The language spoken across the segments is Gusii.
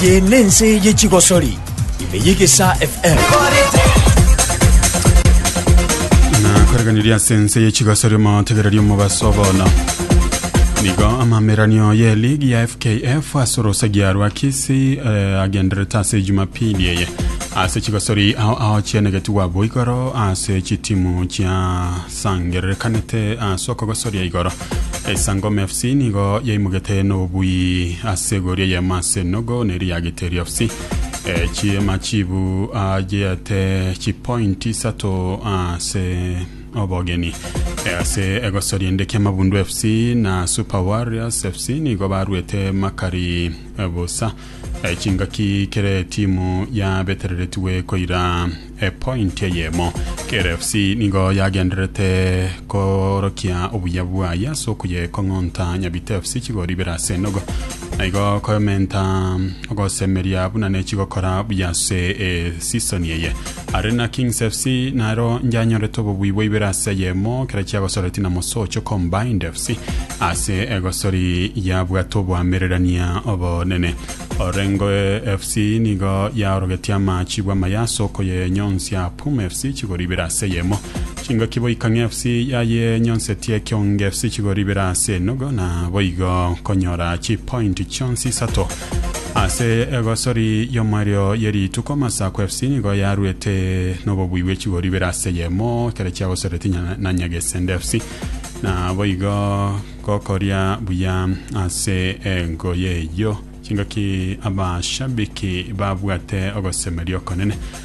Eye nense ye chigosori ime y'egesa FM. nakoreganiria ase ense y'echigasari omotegereri omobaso bono nigo amameranio ye ligi ya fkf ase orosagia rwa kisi eh, agenderete ase jumapili eye Ase chigosori ao ao chianegetigwa bo igoro ase chitimu chiasangererekanete ase okogosoria igoro esangoma fc nigo yaimogete nobobui ase egori eyemo ase nogo neri ya giteri fc Eh, chiema chibu ajeate chipointi isato ase obogeni Eh, ase egosori ende kia mabundu fc na super warriors fc nigo baruete makari eh, bosa Eh, chingaki kere timu yabetereretigwe koira epointi eyemo. Kere FC nigo yagenderete korokia obuya bwaye ase okuyekong'onta Nyabite FC chigori ibere ase enogo na igo komenta ogosemeria buna nechigokora buya ase esisoni eye. Arena Kings FC nero nyanyorete obobui bwa ibere ase eyemo kera chiagosoreti na Mosocho Combined FC ase egosori yabwate oboamererania obonene. Orengo FC nigo yaorogetie amachi bw'amaya ase okoyenyonsia Pum FC chigori ibere ase eyemo. Chingoki Boikang'e FC yayenyonsetie Kionge FC chigori ibere ase enogo na boigo konyora chipointi chionsi isato. Ase egosori y'omoerio ye rituko Masaku FC nigo yaruete nobobui bwe chigori ibere ase yemo ekero chiagosoreti nya- na Nyagesende FC na boigo gokoria buya ase engoye eyio chingaki abashabiki babwate ogosemeria okonene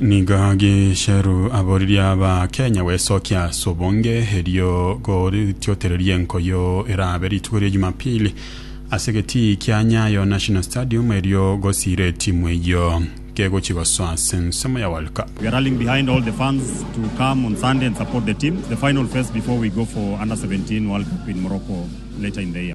Nigo Gicheru aboririe Abakenya gwesokia ase obonge erio gotiotereria enkoyo erabe rituko ria Jumapili ase egetii kia Nyayo National Stadium erio gosiire etimu eyio kegochi gosoa ase ensemo ya World Cup. We are rallying behind all the fans to come on Sunday and support the team, the final phase before we go for Under 17 World Cup in Morocco later in the year.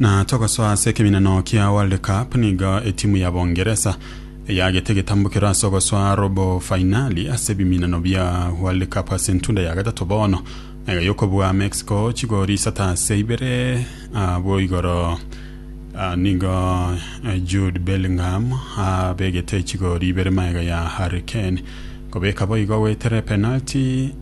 Na togosoa ase ekeminano kia World Cup, nigo etimu ya Bongeresa eyagete egetambukero ase ogosoa robo fainali ase ebiminano bia World Cup ase entunda ya gatato bono iga y'okobua Mexico chigori isato ase ibere. Abwo igoro nigo Jude Bellingham abegete chigori ibere magega ya Harry Kane kobeka boigo goetera epenalty.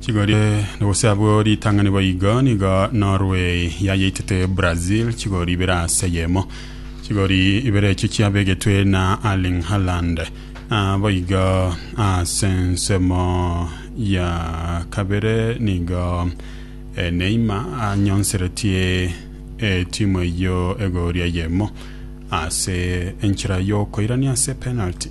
Chigorie gose abwo ritang'ani boigo nigo Norway yayeitete Brazil chigori ibere ase eyemo. Chigori ibere echio chiabegetwe na Erling Haaland boigo ase ensemo ya kabere nigo eh, Neymar anyonseretie etimu eyio egoria eyemo ase enchera y'okoirania ase penalty.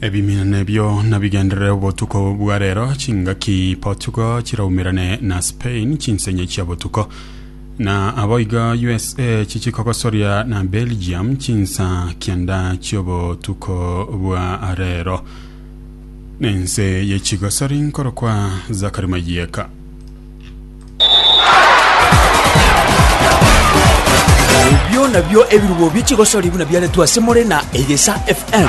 Ebimina ebio nabigenderere obotuko bwa rero, chingaki Portugal chiraumerane na Spain chinsenye chia botuko, na aboigo USA chichi kogosoria na Belgium chinsa kianda chiobotuko bwa rero. Nense ye chigosori nkorokwa Zakari Mayieka. Ebio nabio ebirubo bi'echigosori buna biaretwe ase more na Egesa FM.